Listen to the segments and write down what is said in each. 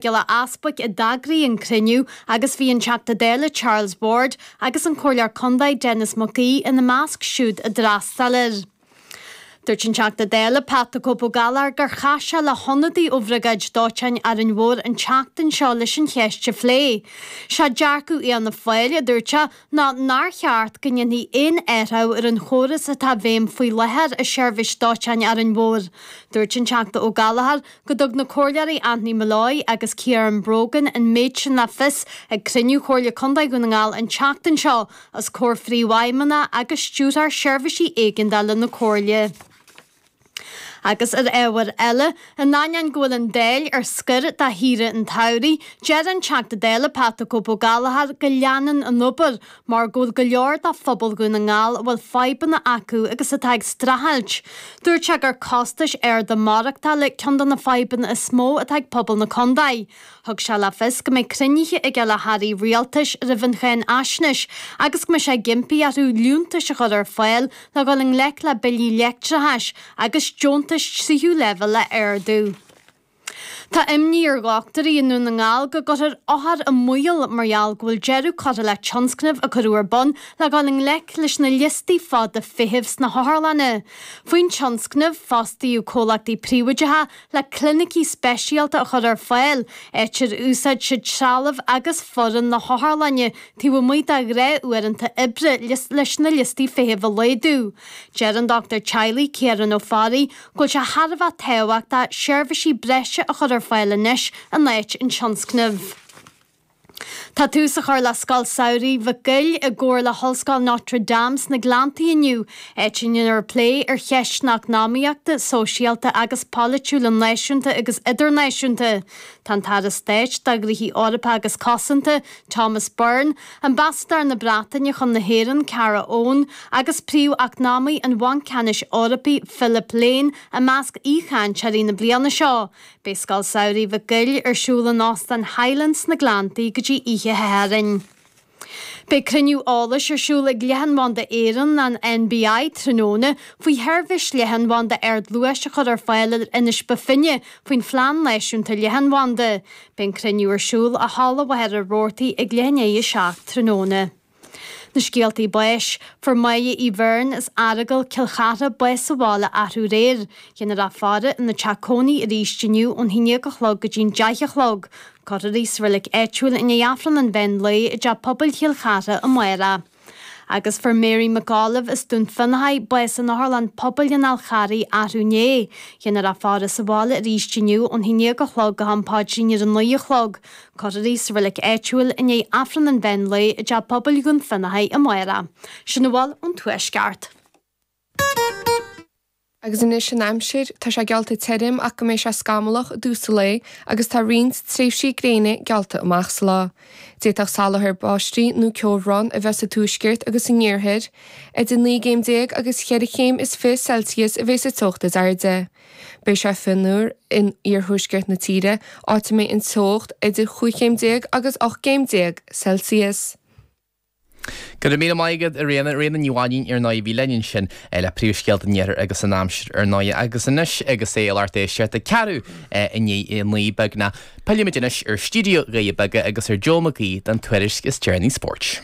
Giolla Easbuic a d'eagraigh an cruinniú agus bhí an Teachta Dála Charles Ward agus an Comhairleoir Contae Denis McGee ina measc siúd a d'fhreastal air. Dúirt an Teachta Dála Pat the Cope Ó Gallchóir gur chas sé le hionadaí ó Bhriogáid Dóiteáin Árainn Mhór an tseachtain seo leis an cheist a phlé. Seo dearcadh Fhianna Fáil, a dúirt sé, ná nár cheart go ndéanfaí aon athrú ar an chóras atá i bhfeidhm faoi láthair i seirbhís dóiteáin Árainn Mhór. Dúirt an Teachta Ó Gallchóir go dtug na Comhairleoirí Anthony Molloy agus Ciaran Brogan an méid sin le fios ag cruinniú Chomhairle Contae Dhún na nGall an tseachtain seo os comhair Phríomhfheidhmeannach agus Stiúrthóir Seirbhísí Éigeandála na Comhairle. Agus ar ábhar eile, in ainneoin go bhfuil an Dáil ar scor do shaoire an tsamhraidh, deir an Teachta Dála Pat 'The Cope' Ó Gallchóir go leanann an obair mar go bhfuil go leor de phobal Dhún na nGall a bhfuil fadhbanna acu agus atá ag streachailt. Dúirt sé gur costais arda maireachtála ceann de na fadhbanna is mó atá ag pobal na contae. Thug sé le fios go mbeidh cruinnithe aige le hairí rialtais roimh an cháinfhaisnéis agus go mbeidh sé ag impí orthu liúntais a chur ar fáil le dhul i ngleic le billí leictreachais agus deontais tríú leibhéal a ardú. Tá imní ar dhochtúirí i nDún na nGall go gcuirfear othair i mbaol mar gheall go bhfuil deireadh curtha le tionscnamh a cuireadh ar bun le dhul i ngleic leis na liostaí fada feithimh sna hotharlanna. Faoin tionscnamh, fostaíodh comhlachtaí príobhaideacha Le clinicí speisialta a chur ar fáil, áit ar úsáid siad trealamh agus foireann na hotharlainne taobh amuigh dá ngnáthuaireanta oibre leis na liostaí feithimh a laghdú. Deir an dochtúir teaghlaigh, Ciarán Ó Fearraigh, go bhfuil sé thar a bheith tábhachtach seirbhísí breise a chur ar fáil anois in áit an tionscnaimh. Tá tús á chur le Scoil Samhraidh Mhic Giolla i gcomhar le hOllscoil Notre Dame sna Gleanntaí inniu, áit a ndéanfar plé ar cheisteanna eacnamaíochta, sóisialta agus polaitiúla náisiúnta agus idirnáisiúnta. Tá an tAire Stáit do Ghnoithe Eorpacha agus Cosanta, Thomas Byrne, Ambasadóir na Breataine chun na hÉireann, Kara Owen, agus Príomh-Eacnamaí an Bhainc Ceannais Eorpaigh, Philip Lane, i measc aoichainteoirí na bliana seo. Beidh Scoil Samhraidh Mhic Giolla ar siúl in Óstán Highlands sna Gleanntaí go dtí oíche Shathairn. Beidh cruinniú eolais ar siúl ag Leathanbhanda Éireann, an NBI, tráthnóna faoi sheirbhís leathanbhanda ardluais a chur ar fáil ar Inis Bó Finne faoin Phlean Náisiúnta Leathanbhanda. Beidh an cruinniú ar siúl i Halla Mhachaire Rabhartaigh ag leath i ndiaidh a seacht tráthnóna. Na scéaltaí báis, Fuair May Uí Bheirn as Aireagal Cill Chartha bás sa bhaile arú aréir, Ghéanfar a faire ina teach cónaí arís inniu ón haon déag a chlog go dtí'n deich a chlog, Cuirfear í sa reilig áitiúil i ndiaidh Aifreann an Mheán Lae i dTeach Pobail Chill Chartha amárach. Agus fuair Mary McAuliffe as Dún Fionnachaidh bás in Otharlann Pobail an Fháil Charraigh arú inné, Ghéanfar a faire sa bhaile arís inniu ón haon déag a chlog go ham paidrín ar a naoi a chlog, Cuirfear í sa reilig áitiúil i ndiaidh Aifreann an Mheán Lae i dTeach Pobail Dhún Fionnachaidh amárach. Sin a bhfuil ón Tuaisceart. Agus anois an aimsir, tá sé geallta tirim ach go mbeidh sé scamallach i dtús an lae agus tá roinnt tréimhsí gréine geallta amach sa lá. D'fhéadfadh salachar báistí nó ceobhrán a bheith sa tuaisceart agus san iarthar. Idir naoi gcéim déag agus cheithre chéim is fiche Celsius a bheidh sa teocht is airde. Beidh sé fionnuar in iarthuaisceart na tíre, áit a mbeidh an teocht idir chúig chéim déag agus ocht gcéim déag Celsius. Go raibh míle maith agat, a Ríona, Ríona Ní Mhainín, ar ndóigh, a bhí linn ansin le príomhscéalta an iarthair agus an aimsir, ar ndóigh, agus anois agus é i lár tuiseart a ceathrú i ndiaidh a naoi, beagnach, pillfimid anois ar Stiúideo Doirí Beaga agus ar Joe McGee don tuairisc is deireanaí spóirt.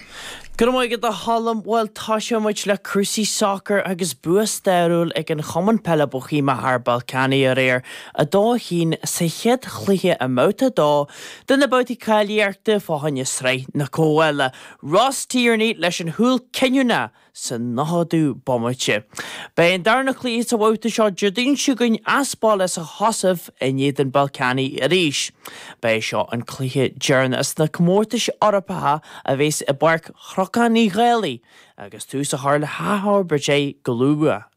Go raibh maith agat a Cholm. Bhuel toiseoidh muid le cúrsaí sacair agus bua stairiúil ag an Chumann Peile Bóithéamach thar Ballkani aréir, 2, 1, sa chéad chluiche i mbabhta a dó de na babhtaí cáilíochta fá choinne Sraith na Comhdhála. Ross Tierney leis an chúl cinniúnach! sa nóchadú bomaite. Beidh an darna cluiche sa bhabhta seo Déardaoin seo chugainn as baile sa Chosaiv in éadan Ballkani arís. Ba é seo an cluiche deireanach sna comórtais Eorpacha a bhéas i bPáirc Chnocán Uí Dhálaigh agus tús á chur le hathfhorbairt go luath.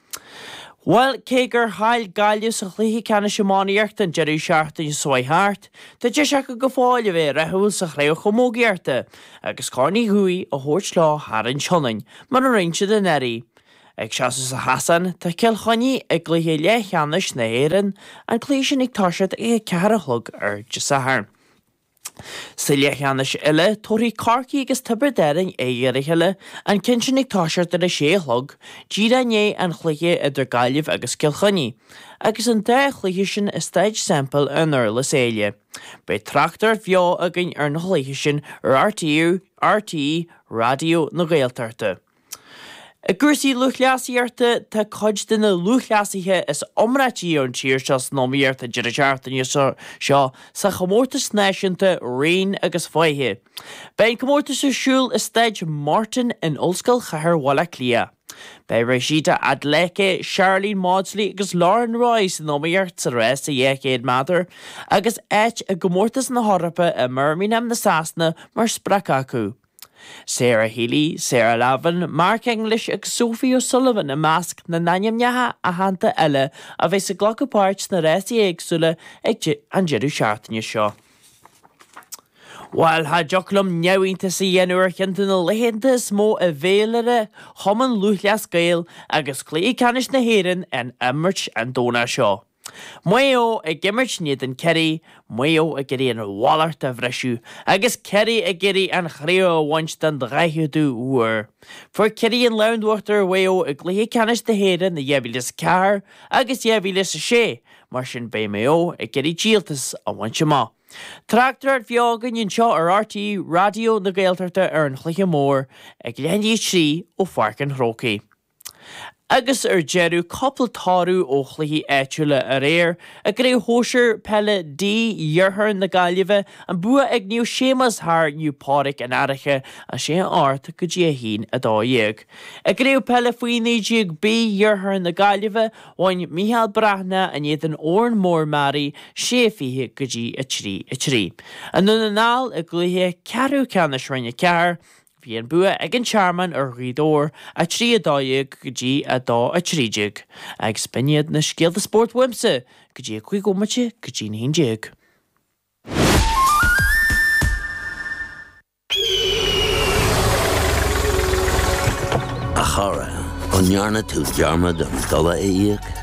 Bhuel, cé gur chaill Gaillimh sa chluiche ceannais iománaíochta an deireadh seachtaine seo a chuaigh thart, tá deis acu go fóill a bheith rathúil sa chraobh chamógaíochta agus Corn Uí Dhubhthaigh a thabhairt leo thar an tSionainn, mar a rinne siad anuraidh. Ag seasamh sa chasán, tá Cill Chainnigh i gcluiche leathcheannais na hÉireann, an cluiche sin ag toiseacht ag a ceathair a chlog ar Dé Sathairn. Sa leathcheannais eile, tabharfaidh Corcaigh agus Tiobraid Árainn aghaidh ar a chéile, an ceann sin ag toiseacht ar a sé a chlog, díreach i ndiaidh an chluiche idir Gaillimh agus Cill Chainnigh. Agus an dá chluiche sin i Staid Semple i nDurlas Éile, beidh tráchtaireacht bheo againn ar na cluichí sin ar RTÉ Raidió na Gaeltachta. I gcúrsaí lúthchleasaíochta, tá cuid de na lúthchleasaithe is iomráití ar an tír seo san iomaíocht an deireadh seachtaine seo sa chomórtas náisiúnta raoin agus faiche. Beidh an comórtas ar siúl i Staid Morton in Ollscoil Chathair Bhaile Átha Cliath. Beidh Rhasidat Adeleke, Sharlene Mawdsley agus Lauren Roy san iomaíocht sa rás 200 méadar agus áit i gcomórtas na hEorpa i mBirmingham na Sasana mar sprioc acu. Sarah Healy, Sarah Lavin, Mark English agus Sophie O'Sullivan i measc na n-ainmneacha aitheanta eile a bheas ag glacadh páirt sna rásaí éagsúla ag an deireadh seachtaine seo. Bhail cha dtiocfadh liom neamhiontas a dhéanamh ar cheann de na laethanta is mó i bhféilire Chumann Lúthchleas Gael agus Cluiche Ceannais na hÉireann á n-imirt an Domhnach seo. Maigh Eo ag imirt in éadan Ciarraí, Maigh Eo ag iarraidh an mhallacht a bhriseadh agus Ciarraí ag iarraidh an chraobh a bhaint den 40ú huair. Fuair Ciarraí an lámh in uachtar ar Mhaigh Eo i gcluiche ceannais na hÉireann i 2004 agus 2006, mar sin beidh Maigh Eo ag iarraidh díoltas a bhaint amach. Tráchtaireacht bheo againn anseo ar RTÉ Raidió na Gaeltachta ar an chluiche mór ag leath i ndiaidh a 3 ó Pháirc an Chrócaigh. Agus ar deireadh, cúpla toradh ó chluichí áitiúla aréir i gCraobh Shóisir Peile D iarthar na Gaillimhe, an bua ag Naomh Séamus thar Naomh Pádraig An Fhairche, 6-8 go dtí 1, 12. I gCraobh Peile Faoi 19 B iarthar na Gaillimhe, bhain Micheál Breathnach in éadan Órán Mór-Mearaí, 6, 20 go dtí 3, 3. I nDún na nGall i gcluiche ceathrú ceannais Roinn 4, Bhí an bua ag an Tearmann ar Ghaoth Dobhair, 3 12 go dtí 2 13, agus b'in iad na scéalta spóirt uaimse go dtí a cúig bhomaite go dtí na haon déag. A chara, an ndearna tú dearmad an dola a íoc?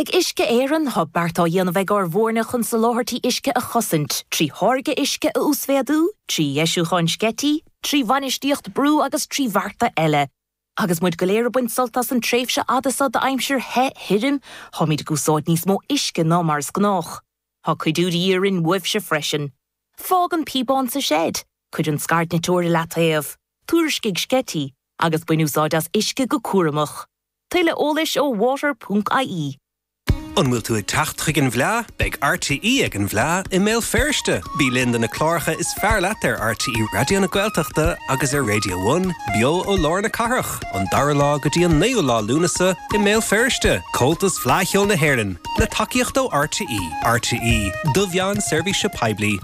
Ag Uisce Éireann, tá beart á dhéanamh ag ár bhfoirne chun soláthairtí uisce a chosaint, trí tháirgeadh uisce a uasmhéadú, trí dheisiúcháin sceití, trí bhainistíocht brú agus trí bhearta eile. Agus muid go léir ag baint sult as an tréimhse fhada seo d'aimsir the, thirim, táimid ag úsáid níos mó uisce ná mar is gnách. Tá cuidiú de dhíth orainn uaibhse freisin. Fág an píobán sa seid, cuir an scairdniteoir i leataobh, tuairiscigh sceití, agus bain úsáid as uisce go cúramach. Tuilleadh eolais ó water ponc ie. An bhfuil tú ag teacht chuig an bhFleá? Beidh RTÉ ag an bhFleá i mBéal Feirste! Bí linn do na cláracha is fearr leat ar RTÉ Raidió na Gaeltachta agus ar Radio One, beo ó lár na cathrach, an 2ú lá go dtí an 9ú lá Lúnasa i mBéal Feirste! Comhaltas Fleá Cheoil na hÉireann, le tacaíocht ó RTÉ. RTÉ, do mheán seirbhíse poiblí.